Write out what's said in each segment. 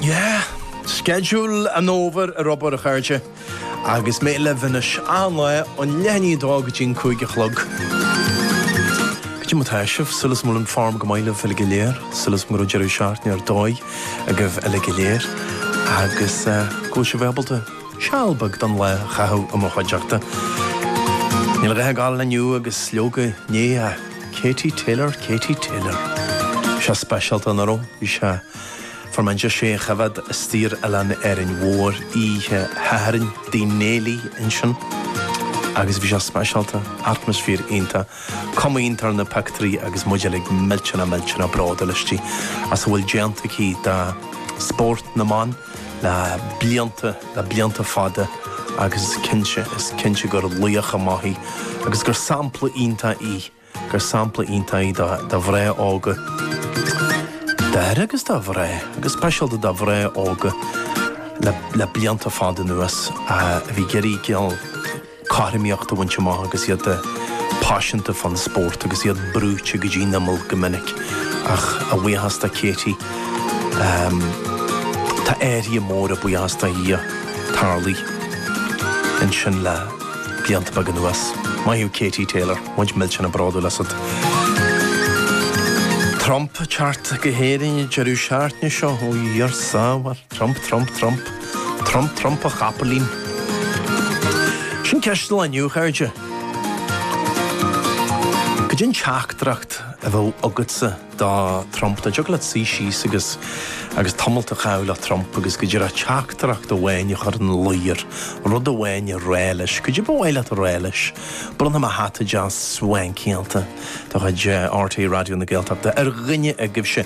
Yeah! Sceideal an fhómhair ar obair, a chairde. Agus mé libh anois, achan lá, ó leath i ndiaidh a dó go dtí an cúig a chlog. Cad é mar atá sibh, súil agam go bhfuil an fhoirm go maith libh uilig go léir, súil agam go raibh deireadh seachtaine ar dóigh agaibh uilig go léir, agus go bhfuil sibh ábalta seal beag den lá a chaitheamh i mo chuideachta. Níl a dhath ag áil inniu agus leoga inné a. Katie Taylor, Katie Taylor. Bhí sé speisialta nach raibh. Bhí sé fuair mé deis é a choimhéad istigh ar Oileán Árainn Mhór oíche Shathairn i dTigh Néilí ansin agus bhí sé speisialta, atmaisféar iontach. Cuma iontach ar na pioctúirí agus muid uilig millteanach millteanach bródúil aisti as a bhfuil déanta aici do spórt na mban. le blianta, le blianta fada agus is cinnte, is cinnte gur laoch maith í agus gur sampla iontach í, gur sampla iontach í do mhná óga, d'fhir agus do mhná, ach go speisialta do mhná óga le blianta fada anuas a bhí ag iarraidh cineál. cothromaíocht a bhaint amach agus iad paiseanta fán spórt agus iad brúite go dtí an imeall go minic. Ach a bhuíochas do Katie, tá athruithe móra, buíochas do Dhia, tarlaithe ansin le blianta beaga anuas. Maith thú Katie Taylor, muid millteanach bródúil asat. Trump ag teacht go hÉirinn, deireadh seachtaine seo ó dheartháir. Trump, Trump, Trump. Trump, Trump, a chapaillín. Sin ceist an lae inniu, a chairde. Cad é an teachtaireacht a bheadh agatsa do Trump? Dá dtiocfadh leat suí síos agus agus tamalt a chaitheamh le Trump agus go díreach teachtaireacht amháin a chur ina luí air, rud amháin a rá leis. Cad é ba mhaith leat a rá leis? Bronnfaidh mé hata deas swankyáilte de chuid RTÉ Raidió na Gaeltachta ar dhuine agaibhse.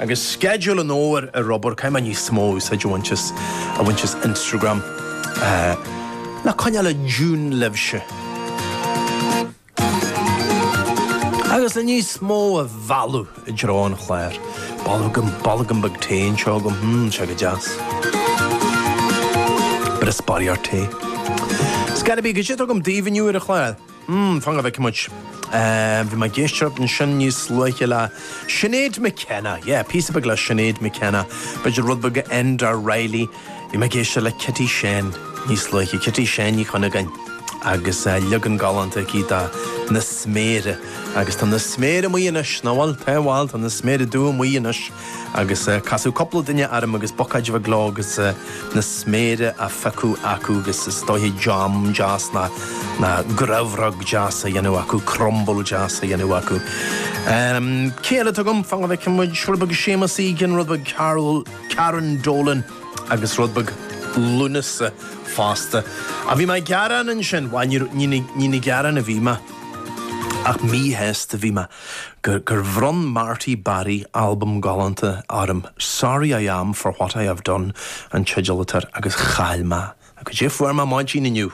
Agus sceideal an fhómhair ar obair, caithfidh mé níos mó úsáide a bhaint as Instagram. Le coinneáil i dtiúin libhse! Agus le níos mó a mhealladh i dtreo an chláir, bolgam, bolgam beag tae anseo agam, hmm, sé go deas. Brisboirie ar tae. So cad é a bhí, cad é atá agam daoibh inniu ar an chlár. mm fan go bhfeice muid eh bhí mé ag éisteacht ansin níos luaithe le Sinéad McKenna yeah píosa beag le Sinéad McKenna b'fhéidir rud beag ó Enda Reilly bhí mé ag éisteacht le Kitty Sheáin níos luaithe Kitty Sheáin Uí Chuinneagáin agus eh leagan galánta aici de Na Sméara agus tá na sméara amuigh anois nó bhuel tá bhuel tá na sméara dubha amuigh anois. Agus casadh cúpla duine orm agus bocáid bheag leo agus na sméara á phiocadh acu agus is dóiche jam deas ná grabhróg deas á dhéanamh acu, crumble deas á dhéanamh acu. Cé eile atá agam? Fan go bhfeicfidh muid, rud beag Séamus Egan, rud beag Carol, Karen Dolan agus rud beag Lúnasa fosta. Á, bhí mé ag gearán ansin? Bhuel, ní ag gearán a bhí mé ach míshásta a bhí mé. gur bhronn Marty Barry albam galánta orm, Sorry I Am for What I Have Done an teideal atá air, agus chaill mé é. Agus fuair mé maidin inniu.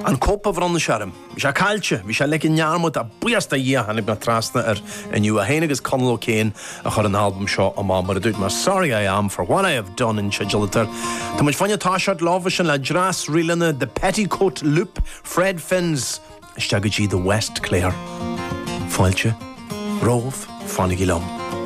An cóip a bhronn sé orm, bhí sé caillte, bhí sé ligthe i ndearmad, ach buíochas do Dhia tháinig mé trasna air inniu. É féin agus Conal O'Kane a chuir an albam seo amach, mar a dúirt mé, Sorry I Am for What I Have Done an teideal atá air. Tá muid féin ag toiseacht linn ansin le dreas ríleanna The Petticoat Loop, Fred Finn's isteach go dtí The West Clare. Fáilte romhaibh, fanaigí liom.